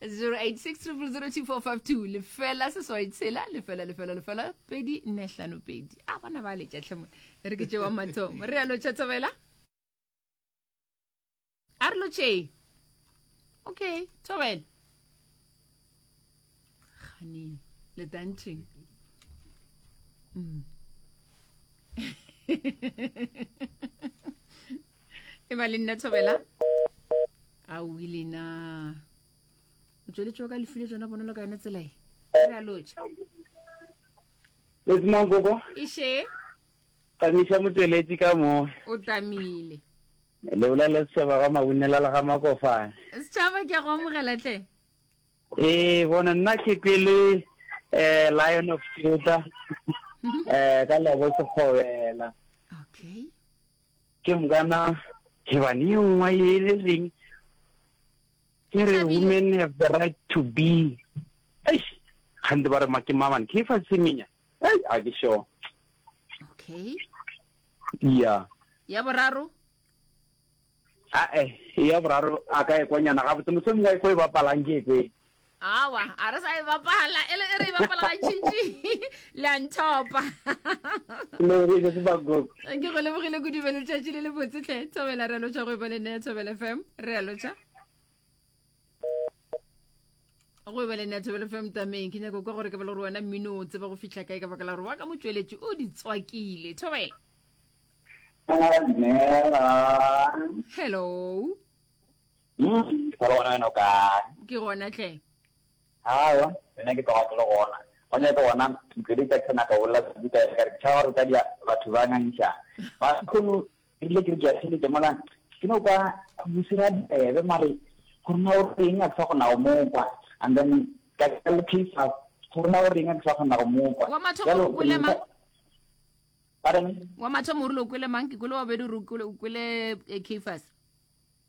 0860002452 lefela seswai tshela lefela lefela lefela pedi nne hlano pedi a bona ba letša tlhemo e re ke tšewa mathomo re yalo tšhatshabela a re lotšee okay thobela gane le dantšheng mm. e ba le nna thobela a o ile na o tsweletšeo ka lefile tsona bonolo ka yone tselae re a lotša lesimangkoko ešhe tamiša motsweletši ka mo o tamile le bolele setšhaba ga mabunela le ga makofane setšhaba ke a go amogela tle ee bona nna ke pele um lion of juda um ka lebo sekgobela okay Ke mgana Heban e nngwe ye e le reng ke re women have the right to be eish gante ba re ma ke maman ke fa semenya ei a ke sure okay ya ya boraro a e ya boraro a ka e kwanyana ga botse mosong ga e go e bapalang ke e awa a re sa e bapala e le e re e bapala gantšintši le a nthopa lebogile sebakoko ke go lebogile kudu be letšatši le le botsetlhe thobela re lotšha go e ba le nea thobela fm re a lotšha go e ba le nea thobela fm tameng ke nyako kwa gore ke bele gore wena mmino o tseba go fitlha kae ka baka la gore wa ka motšweletši o di tswakile thobela hello Mmh, wa re gona wena o kae? Ke gona hle. Aowa, wena ke tloga ke le gona. Wa nyaka gona Mtlwedi Jackson a ka bolela kudu ka eka re ke tšhaba gore ka dia batho ba ngangišang. Ba kgono re rile ke re ke a theletša mola ke no kwa bosira bebe mare gore na o reng a ke sa kgona go mo kwa and then ka ka le case gore na o reng a ke sa kgona go mo kwa. Wa mathomo re kwele mang? Pardon? Wa mathomo re lo kwele mang? Ke kwele wa bedi re kwele Kefas.